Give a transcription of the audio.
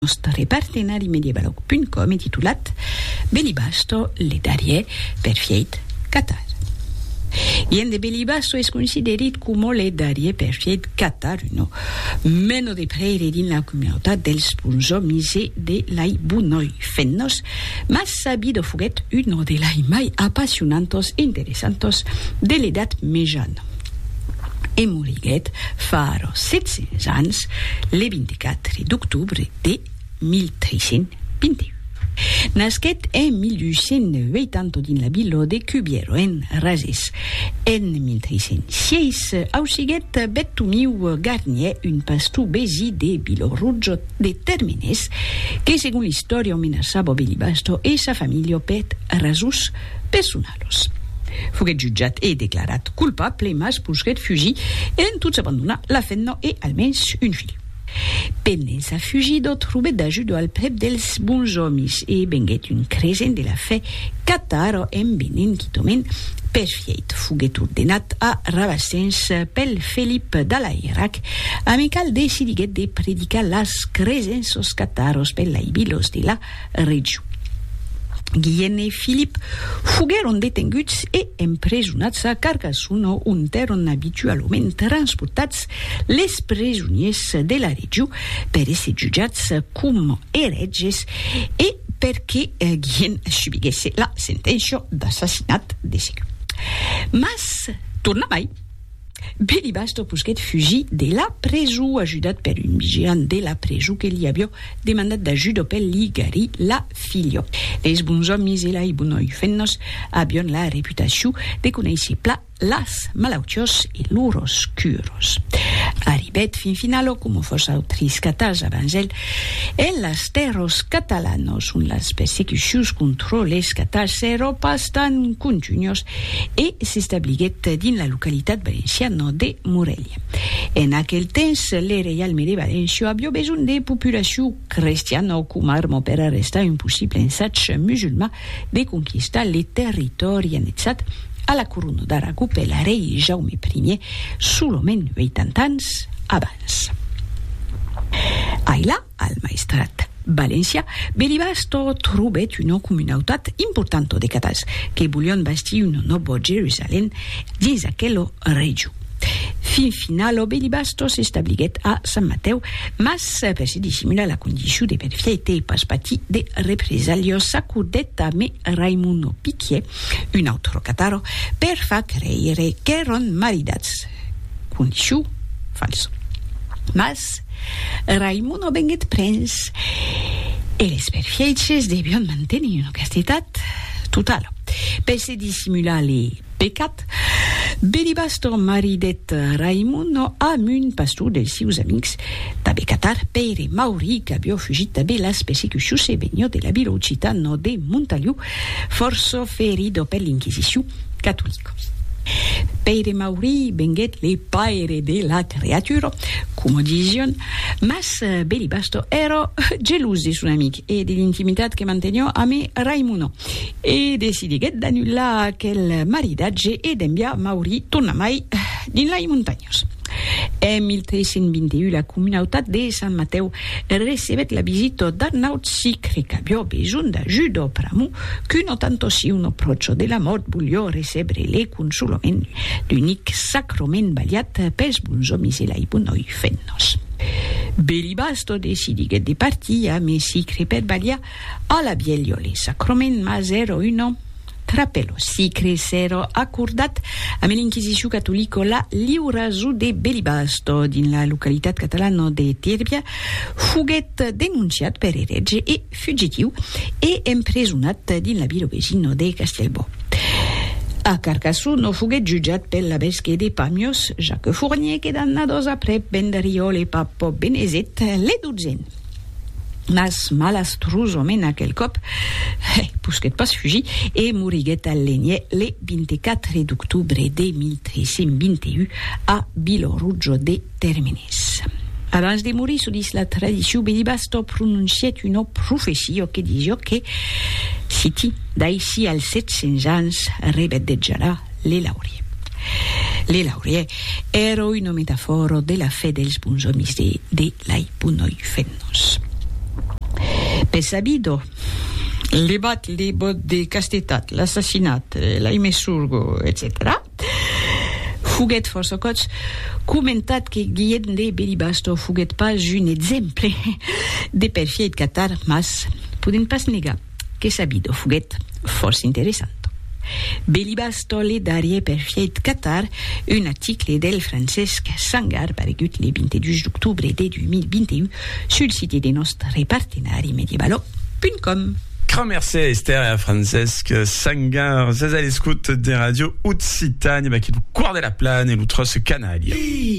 nòstre partenari medievaloc.com e titulat Belibasto le darrier perfièit catar. Gien de Belibasto es considerit coma le darrier perfièit catar, uno meno de prèire dins la comunautat dels bonsomis e de lai bonoi fent-nos, mas sabido foguèt uno de lai mai apassionantos e interessantos de l'Edat Mejana. e moriguèt fara 700 ans le 24 d'octobre de 1321. Nasquèt en 1880 dins la vila de Cubiero, en Razès. En 1306 ausiguèt Bettomiu Garnier, un pastor besí de Vilorrujo de Termenés, que segon l'istòria menaçava Belibasto e sa familha per rasons personalas. Carlos. Foguèt jutjat e declarat culpable, mas pousquèt fugir e en tot s'abandonar la femna e almens un filh. Pendent sa fugida trobèt d'ajuda al prèp dels bons òmis e venguèt un cresent de la fè catara en venent quitament perfièit. Foguèt ordenat a Rabasens pel Felip d'Alairac, amical decidiguèt de predicar las cresenças cataras per laibilos de la Regiu. Guillen e Filip foguèron detenguts e empresonats a Carcassona ont èron abitualament transportats les presoniers de la Regiu per èsser jutjats coma erètges e perque Guillen subiguèsse la senténcia d'assassinat de segur. Mas tornamai. Belibastro posquèt fugir de la preso ajudat per un vigilant de la preso que li avió demandat d'ajuda per li garir la filha. Leis bons òmis e lai bonoi fennos avión la reputacion de conéisser pla las malautiós e loros curos. Arribèt fin finalo coma fòs autris catas abans el, en las tèrros catalanos ont las persecucions contro les catas s'èro pas tan contunhos e s'establiguèt dins la localitat valenciana de Morelha. En aquel temps, le reialme de Valencia avió besonh de populacion crestiana coma arma per arrestar un possible ensatge musulman de conquistar le territòri annexat a la corona d'Aragó per l'arrei Jaume Ier solament 80 ans abans. Ailà, Al Maestrat valencià Belibasto trobèt una comunautat importanta de catals que volián bastir una nòva Jerusalèm dins aquela region. Fin finala Belibasto s'establiguèt a Sant Matèu, mas per se dissimular la condicion de perfièite e pas patir de represalhas s'acordèt a Me Raimono Piquier, un autre catar, per far creire qu'èran maridats. Condiçiu, fals. Mas, Raimon o venguèt prens e les perfièches devion mantenir una castetat totala. Per se dissimular le pecat, Belibastor maridèt Raimon amb un pastor dels sieus amics d'abe Catar, Pèire Mauri, qu'avió fugit d'abe las persecucions e venió de la vila occitana de Montaliu Fòrça ferido per l'Inquisicion catolica. Pèire Maurí venguèt le paire de la creatura, coma disián, mas Belibasto èra gelós de son amic e de l'intimitat que manteniá amé Raimona, e decidiguèt d'anullar aquel maridatge e d'enviar Maurí tornamai dins lai montanhas. En 1321, la comunautat de Sant Matèu recebèt la visita d'un naut sicre qu'aviá besonh d'ajuda pr'amor qu'un atantocion aprocho de la mòrt voliá recebre le consolament d'unic sacrament balhat pels bons òmis e lai bonòi fennas. Belibasto decidiguèt de partir a Mesicre per balhar a la vièlha le sacrament, mas èra una. Trapelo sicre s'èra acordat amé l'inquisicion catolica la liura zo de Belibasto, dins la localitat catalana de Tirbia, foguèt denonciat per erètge e fugitiu e empresonat dins la vila vesina de Castellbò. A Carcassó no foguèt jutjat pel labesque de Pamiòs, Jacques Fournier, que d'annadas aprèp vendariòle pap Benezet, le dotzen. Mas malastrosament aquel còp, hè, posquèt pas fugir e moriguèt al Lenier le 24 d'octobre de 1321 a Vilorujo de Termenés. Abans de morir, çò dis la tradicion, Belibasto prononcièt una profecia que disiá que, citi, D'aicí als 700 ans rebedejarà le laurier. Le laurier èra una metafòra de la fe dels bons òmis de lai bunoi fennos. Be sabido, le bat le bot de castetat, l'assassinat, lai me surgo, etcetèra Foguèt fòrça còps comentat que Guilhèm de Belibasto foguèt pas un exemple de perfièit catar, mas podèm pas negar. Que sabido foguèt fòrça interessant. Belibas Tolle darrier per fièit catar un aticle del Francesc Sangar paregut le 22 d'octobre de 2021 sul site de nòst repartenari medievalo.com. Cra mercé a Esther e a Francesc Sangar. Sas a l'escot de Radio Occitània, baquí lo Quart de la Plana e lo Tròç Canària.